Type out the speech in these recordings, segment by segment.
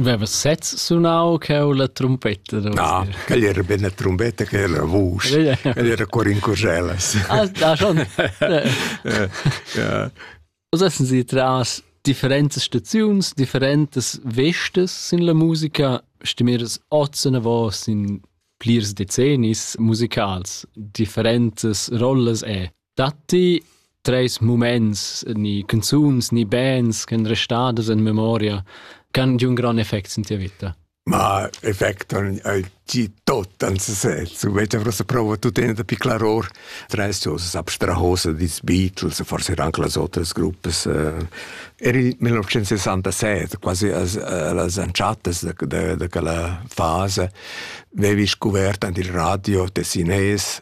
Veva sez sunau cheu la trumpetta? No, quel era ben la trumpetta che era la vusch. Quel era cor in curgelas. Ah, da schon. Was essen Sie tras differentas staziuns, differentas vestes sin la musica? Stimmires ozen vos in plirs decennis musicals, differentas rolles e Datti treis muments, ni canzuns, ni bands ch'en restadas en memoria che han un gran effect in tia vita? Ma effect han gi tot an sesez. U vete vrosa prova tutena da piclar or. Treis cosas abstrahose dis Beatles, forse anche las otras gruppe. Eri 1967, quasi las anciatas de, de, de quella fase, avevi scoperto il radio de Sines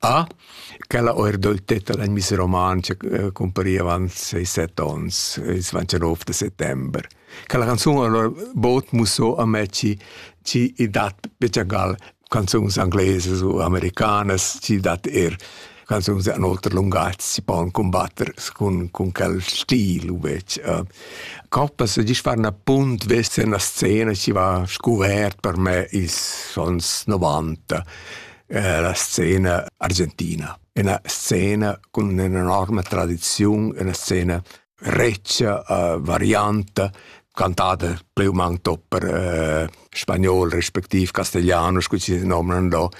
Ah, quella oirdoltetta da Miss Romantscha cumpariva avant seis set ons, ils dvantanov da settember. Quella canzun allura bod musso a me chi chi i dat bgegal canzuns anglesas u americanas, chi dat eir canzuns in oter lungatg si pon cumbatter cun, cun quel stil uvec. Uh, Coppas gist far na punt vester na scena chi va scuvert per me ils sons 90. La scena argentina, üna scena cun ün'enorma tradiziun, üna scena retscha, varianta, cantada plü u mang tot per spagnol respektiv castigliano, scu chi nomnan do.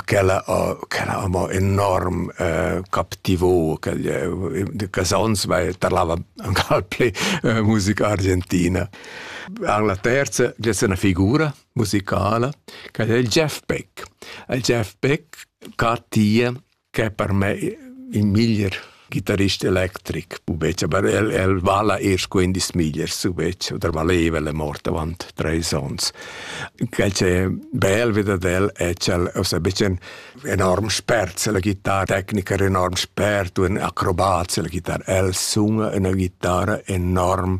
Quella quella amo enorm captivò casons, weil parlava ancal plü musica argentina. En la terza gessa üna figura musicala ch'el è il Jeff Beck. Il Jeff Beck ca tie ch'è per me il miglier ghitarrist electric, pubetg, aber el, el vala eir quindis migliers, pubetg, oder valeva, el è mort avant treis ons. Quel c'è bel wieder del, è c'el, also ein bisschen enorm spert, la chitarretechniker enorm spert, un acrobat, la chitarra, el sung una chitarra enorm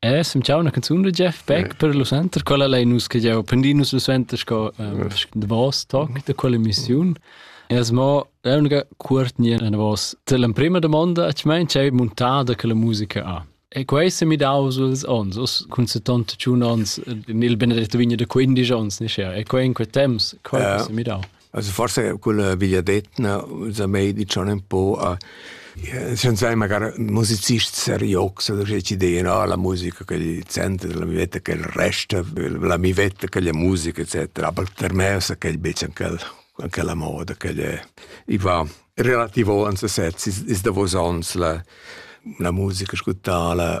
Eh, sem ciao una canzone da Jeff Beck per lo center, quella lei nus che jau prendi nus lo center sco um, the boss talk da quella emissione. E es mo l'unica curtnia na vos te l'emprima domanda a mein c'è montada che la musica ha. E questa mi dau suls ons, us cun 71 ons, nel benedetto vigno da 15 ons, ne sia. E quei in quei temps, quei yeah. mi dau. Also forse quella vegliadetna sa mei dicion un po a schon sai magari musicist seriox oder ci DNA la musica che gli center della mia vita che il resto la mia vita che la musica eccetera aber per me sa che bisschen quel anche la moda che è i va relativo ans sezzi is davos ans la la musica ascoltala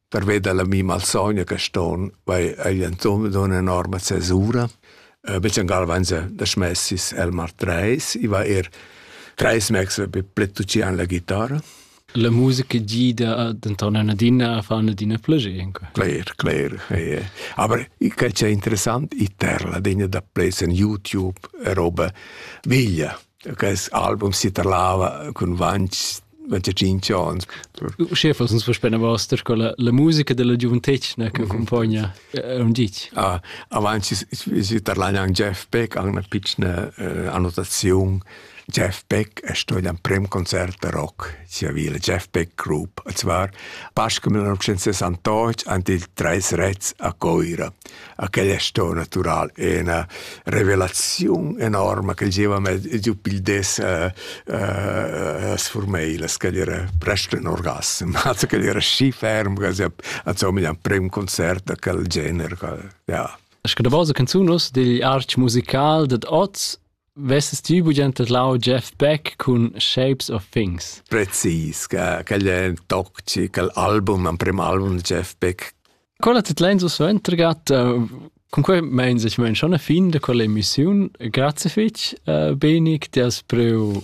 Pervei dalla mi malsogna che ston, vai ei entochen dunna enorma cesura. Uh, Bechengal van se da smessis el mar treis, i va er treis mex be pletucian la chitarra. La musica gida denton adina a far adina plagir. Cler, cler. Eh. Aber che c'è interessant, i terla degna da play in YouTube e roba veglia. Quest album si tarlava cun vans 25 ans. Uschè fas uns verspena vasta sco la, la musica della giuventetgna che accompagna un ditg. Ah, avanti si tarlagna an Jeff Beck an una piccina eh, annotazione. Jeff Beck è stato ein prem concert de rock sia vila Jeff Beck Group, und zwar Pascal 1968 und die Drei Rets a Coira. a quel è sto natural ena revelaziun enorma che gieva me giu pil des uh, uh, sfurmei la scadera presto in orgasm also che era schi ferm che also mi ein prem concert da quel genere ja Es que da vosa canzun us digl arch musical dad oz Vesses ti bugen tedlau Jeff Beck cun Shapes of Things? Precis, quel è toxic, l'album, l'emprim album di Jeff Beck. Quella tedlein so suentergat, con quei meins ich mein schon ein fin da quella emissiun. Grazie fitch, Benik, ti has preu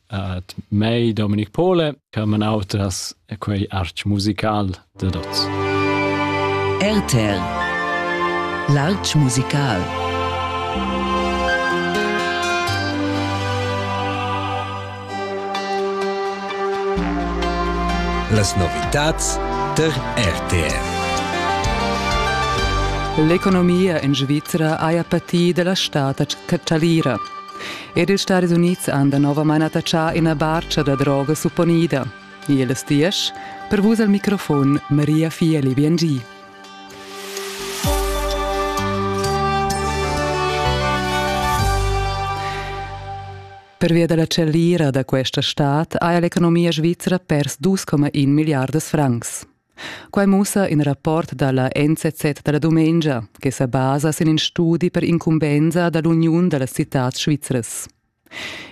At mei Dominic Pole, Carmen Autras e quei arch musical de dots. RTL L'arch musical Las novitats der RTL L'economia en Svizra haja patì da la stad a Catalira. Ed ils Stadis Unids han danovamain attachà ina barcha da droga supponida. Iles diesch, per vus al microfon Maria Fieli Biengi. Pervia dalla cellira da questa stad ha l'economia svizra pers 2,1 miliardas francs. Quai mussa in rapport da la NZZ da la dumengia che sa basa sin in studi per incumbensa da l'uniun da las citads svizras.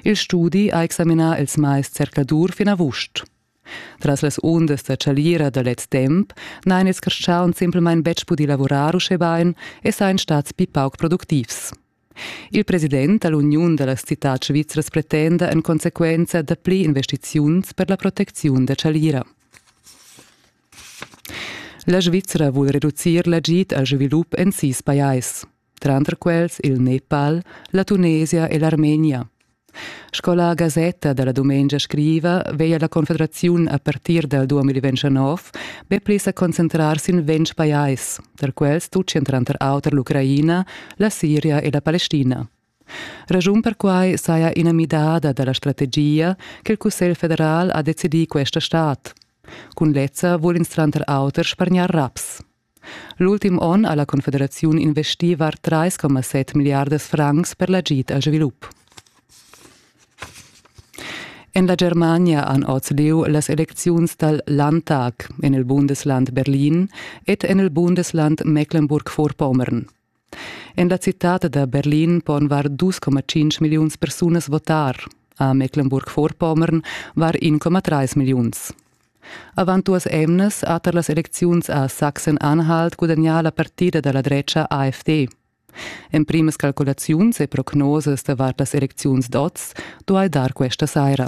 Il studi ha examinà ils mais zercladur fin avust. Tras las undas da chalira da lez temp n'hain ils carstgauns simplamain betg pudì lavurar uschè bain e sain stats pli pauc productivs. Il president da l'uniun da las citads svizras pretenda en consequenza dapli investiziuns per la protecziun da chalira. La Svizra vul reducir l'agid al svilup en sis pajais, tranter quels il Nepal, la Tunesia e l'Armenia. Sco la gasetta dalla dumengia scriva, veia la Confederaziun a partir dal 2029 be pli sa concentrar sin ventg pajais, tar quels tut entran tranter auter l'Ucraina, la Siria e la Palestina. Raschun per quai saja ina midada da la strategia che il Cussegl federal ha decidì questa stad. Cun lezza vul ins tranter auter spargnar raps. L'ultim onn ha la Confederaziun investì var 3,7 milliardas francs per l'agid al svilup. En la Germania han oz lieu las elecziuns dal Landtag en il Bundesland Berlin ed en il Bundesland Mecklenburg-Vorpommern. En la citad da Berlin pon var 2,5 milliuns persunas votar. A Mecklenburg-Vorpommern var 1,3 milliuns. Avant duas emnas ha tar las elecziuns a Sachsen-Anhalt gudagnà la partida da la drecha AfD. En primas calculaziuns e prognosas davart las elecziuns d'oz duai dar questa saira.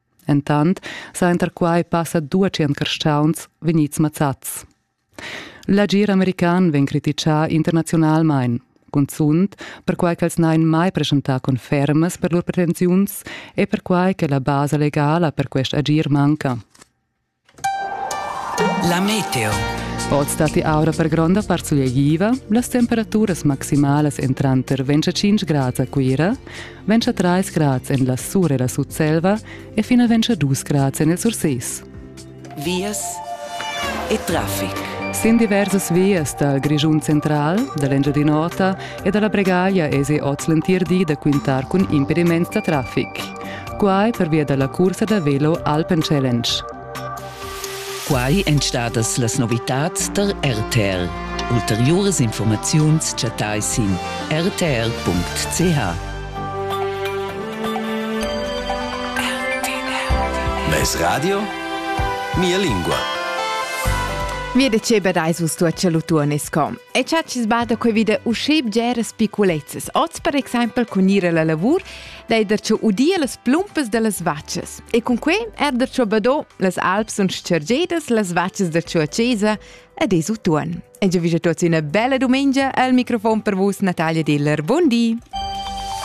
Entant sainter quai passa duatschient carstauns vegnids mazzats. L'agir american vegn critichà internaziunalmain, cunzunt perquai ch'els n'hain mai preschentà confermas per lur pretensiuns e perquai che la basa legala per quest agir manca. La meteo. Oz datti aura per gronda part sulegliva, las temperaturas maximalas èn tranter 25 grads a Cuira, 23 grads en la Sur e la Sutselva e fino a 22 grads en il Surses. Vias e traffic. Sin diversas vias dal Grischun central, da l'Engiadin'Ota e da la Bregaglia esi oz l'entir di da quintar cun impediments da traffic. Quai pervia da la cursa da velo Alpen Challenge. Quai èn stadas las novitads tar RTL. Ulteriuras informaziuns chattai sin rtl.ch. Mes radio? Mia lingua. Mi deceba reis vus tua celutuonesco. E cha ci sbada quei vide usce bgeras piculezzes. Oz per exempel con ire la lavur dei der cho udir las plumpas dellas vaccias. E con quei er der cho bado las alps sun scergedas las vaccias der cho a Cesa ed es utuon. E già vige tuots üna bella dumengia al microfon per vus Natalia Diller. Buondì!